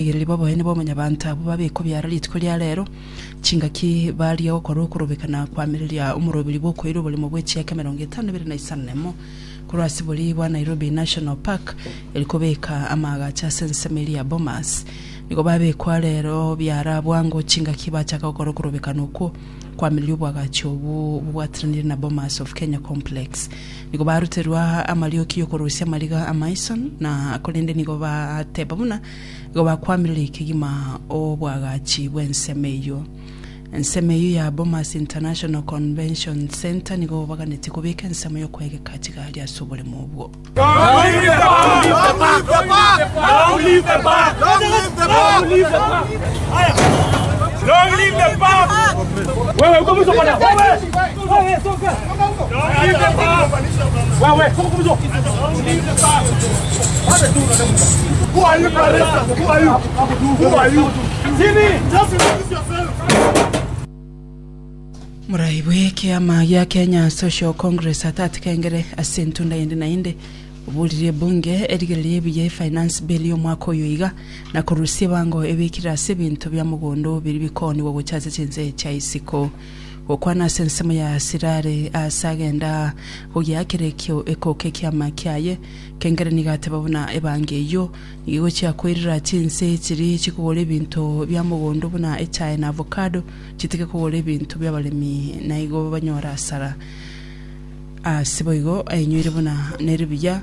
Rigereria boboene bwa omonyabaanto abwo babekwa biara rituko ria reero, chingaki barigia gokora okorobeka na koamereria omorobiri bw'okoira oborimo bwe chiaka emerongo etano na ibere na isano na emo, korwa ase borii bwa Nairobi National Park, erio kobeka amaagacho ase ensemo eria ya Bomas. Nigo babekwa reero biara bwango chingaki bachaka gokora okorobekana okwo koamereria obwagachi obwo bobwatiranire na Bomas of Kenya Complex. Nigo baruterwa amarioki y'okorusia amariga amaiso, na korende nigo bateba buna igo bakwamirire kegima obwagachi bw'ensemo eyio. Ensemo eyio ya Bomas International Convention Centre nigo baganetie kobeka ensemo y'okwegeka chigari ase oboremo obwo. Moraibwe ekeama gia Kenya Social Congress at at kengere ase entunda yende na yende oborire ebunge erigereria ebuya ye finance bill ya omwaka oyo iga na korusia ebango ebekire ase ebinto bia mogondo biri bikoonigwa gocha ase chinse chia isiko Gokwana ase ensemo ya Sirare aase agenda gogiakera ekio ekoka ekiama kiaye, kengere nigo ateba buna ebango eyio nigo egochia koirira chinse chiri chikogora ebinto bia mogondo buna echae na avocado chitige kogora ebinto biabaremi naigo banyore asara. Aase boigo ainyoire buna neribuya.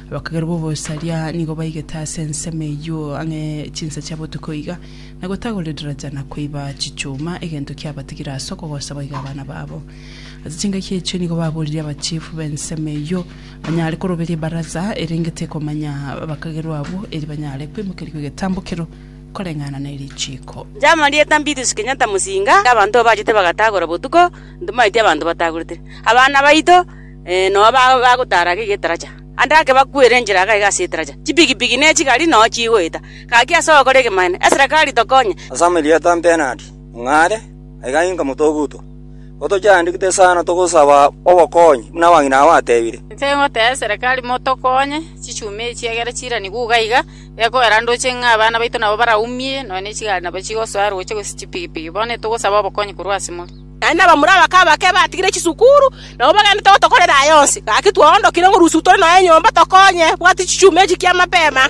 Abakagera b'obosaria nigo baigete ase ensemo eyio ang'e chinsa chia botuko iga, na gotagora edaraja na koiba chichuma, egento kiabatigire ase okogosa boiga abana babo. Ase chingaki echio nigo baboririe abachifu b'ensemo eyio banyare koroberia ebaraza erenge tekomanya abakagerwa abwo, eri banyare koimokerigwa egetambokero koreng'ana ne richiiko. Jean Maria Eta Mbitus Kenyatta Musinga, Abanto bachete bagatagora botuko, ntomaeti abanto batagorete abana baito. Nonya bagotaara gaki getaracha. Ande ake bakwere enchera agaiga ase etaracha, chipigipigi ne chigari nonya chigoeta. Gaki ase ogokora egemanene, eserekari tokonye. Ase amarieta mpenati, ung'are, aiga inka motogutwa. Gotochiandikete esano togosaba obokonyi, buna abang'ina abo batebire. Inche ngotebia eserekari motokonye, chichumi echi egere chiranigwe iga iga, gekoera ndoche ng'a abana baito nabo baraumie, nonya ne chigari nabo chigosoa ere gocha gose chipigipigi. Bono etogosaba obokonyi korwa ase more. Naende abamura abake abake batigire chisukuru, nabo bagendete gotokorera aya onsi. Gaki twaondokire ng'a rusiku tore noe nyomba tokonye, tobwate chichuma echi ki'amabera.